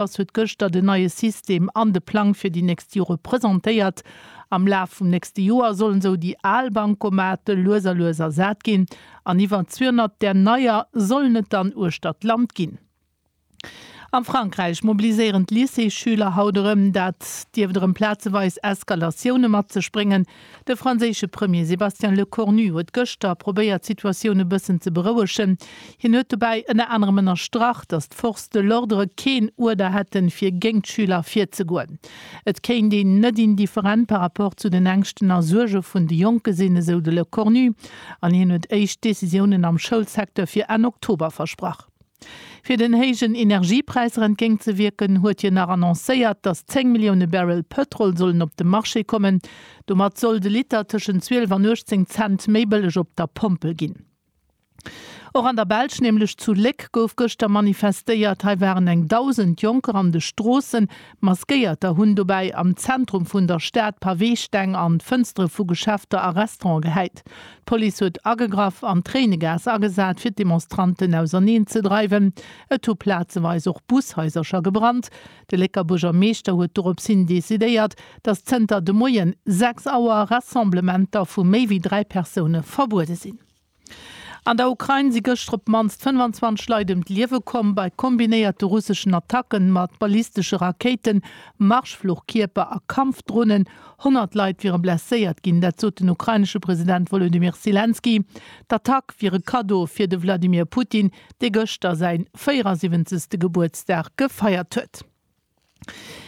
D'Caritas huet gëschter den neie System an de Plang fir déi nächst Jore presentéiert. Am Laf vum nächste Joer sollen esou déi al Bankomate lues a lues ersat ginn an iwwer 200 där neier sollen et dann uechter d'Land ginn. A Frankräich mobiliséieren d'Lycéesschüler haut erëm. Dat dierft erëm plazeweis Eskalatioune mat sech bréngen. De franséische Premier Sébastien Lecornu huet gëschter probéiert d'Situatioun e bëssen ze berouegen. Hien huet dobäi ënner anerem ënnerstrach, datt d'Forces de l'ordre keen Uerder hätten, fir géint d'Schüler virzegoen. Et kéint een net indifferent par rapport zu den Ängschten a Suerge vun de Jonke sinn, esou de Lecornu. An hien huet éischt Decisiounen am Schoulsecteur fir Enn Oktober versprach. Fir den héijen Energiepräisser entgéint ze wierken, huet hien nach annoncéiert, datt 10 Millioune Barrel Pëtrol sollen op de Marché kommen. Domat soll de Liter tëschent 12 an 18 Cent méi bëlleg op der Pompel ginn. Och an der Belsch, nämlech zu Léck, gouf gëschter manifestéiert. Hei waren eng Dausend Jonker an de Stroossen, Maskéierter hunn dobäi am Zentrum vun der Stad Paweesteng an d'Fënstere vu Geschäfter a Restaurante gehäit. D'Police huet agegraff an Tréinegas agesat, fir d'Demonstranten auserneen ze dreiwen. Et hu plazeweis och Bushaisercher gebrannt. De Lécker Buergermeeschter huet dorops hin decidéiert, datt zënter de Moien 6 Auer Rassemblementer vu méi wéi dräi Persoune verbuede sinn. An der Ukrain si gëschter op d'mannst 25 Leit ëm d'Liewe komm bei kombinéierte russeschen Attacken mat ballistesche Rakéiten, Marschfluchkierper a Kampfdronen. Honnert Leit wiere blesséiert ginn, dat sot den ukrainesche President Wolodymyr Selenskyj. D'Attack wier e Kaddo fir de Wladimir Putin, dee gëschter säi 74. Gebuertsdag gefeiert huet.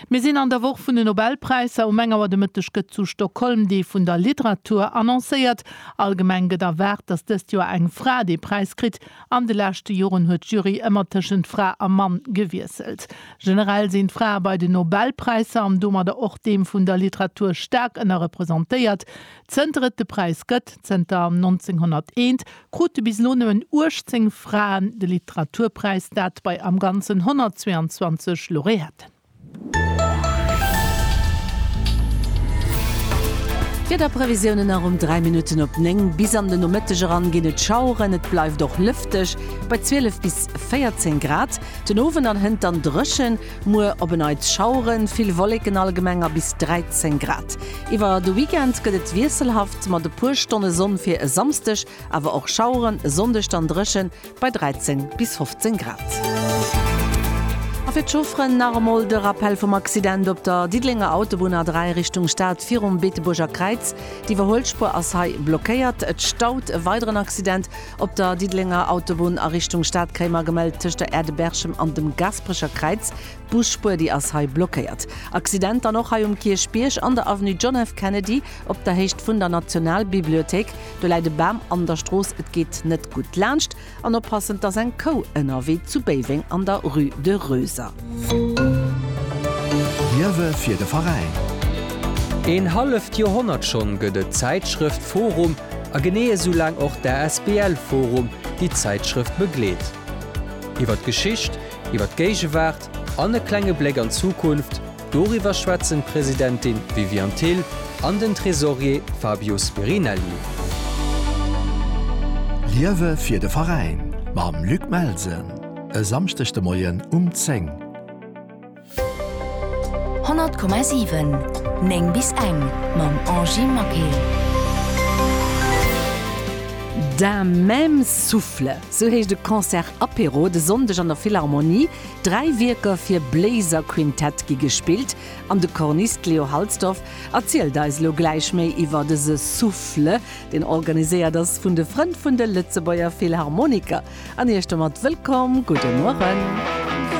Mir sinn an der Woch vun de Nobelpräisser. Um eng Auer de Mëtteg gëtt zu Stockholm dee vun der Literatur annoncéiert. Allgemeng gëtt erwaart, datt dëst Joer eng Fra dee Präis kritt. An de leschte Joren huet d'Jury ëmmer tëschent Fra a Mann gewiesselt. Generell sinn d'Frae bei den Nobelpräisser, an domadder och deem vun der Literatur, staark ënnerrepresentéiert. Zënter et de Präis gëtt, zënter 1901, krute bis elo nëmmen 18 Fraen de Literaturpräis, dat bei am Ganzen 122 Laureaten. Wiederprevisiounen nach um 3 Minutten op 9. Bis an de Nomëtteg eran ginn et Schaueren, et bleift och lëfteg bei 12 bis 14 Grad. Den Owend an hënt dann dréchen. Muer op e Neits Schaueren, vill Wolleken, allgemeng a bis 13 Grad. Iwwer de Weekend gëtt et wiesselhaft mat e puer Stonne Sonn, fir e Samsdeg awer och Schaueren, e Sonndeg dann dréchen bei 13 bis 15 Grad. A fir d'Chaufferen nach emol de Rappell vum Accident op der Diddelenger Autobunn A3 Richtung Stad virum Beetebuerger Kräiz. D'Iwwerhuelspuer ass hei blockéiert. Et staut e weideren Accident Op der Diddelenger Autobunn a Richtung Stad Kréimer gemellt. Tëscht der Aire de Berchem an dem Gasperecher Kräiz, d'Busspuer déi ass hei blockéiert. Accident dann och hei um Kierchbierg an der Avenue John F. Kennedy op der Héicht vun der Nationalbibliothéik. Do läit e Bam an der Strooss, et geet net gutt laanscht. An oppassen, et ass eng Kou ënnerwee zu Béiweng an der Rue de Roeser. Liewe fir de Veräin! Een halleft Joerhonnert schonn gëtt et d'Zäitschrëft forum a genee esou laang och d'ASBL forum, déi d'Zäitschrëft begleet. Iwwer d'Geschicht, iwwer d'Géigewaart an e klenge Bléck an d'Zukunft, doriwwer schwätzen d'Presidentin Viviane Thill an den Tresorier Fabio Spirinelli. Liewe fir de Veräin mam Luc Melsen! E Samschdeg de Moien um 10. 100,7, 9 bis eng mam Angie Maquet. D'un même souffle, sou heescht e Concert Apéro de Sonndeg an der Philharmonie. Dräi Wierker fir Bléiserquintett gi gespillt an de Cornist Leo Halsdorf erzielt eis elo gläich méi iwwer dëse Souffle, deen organiséiert ass vun de Frënn vun de Lëtzebuerger Philharmoniker, an Iech domat wëllkomm. Gudde Mueren.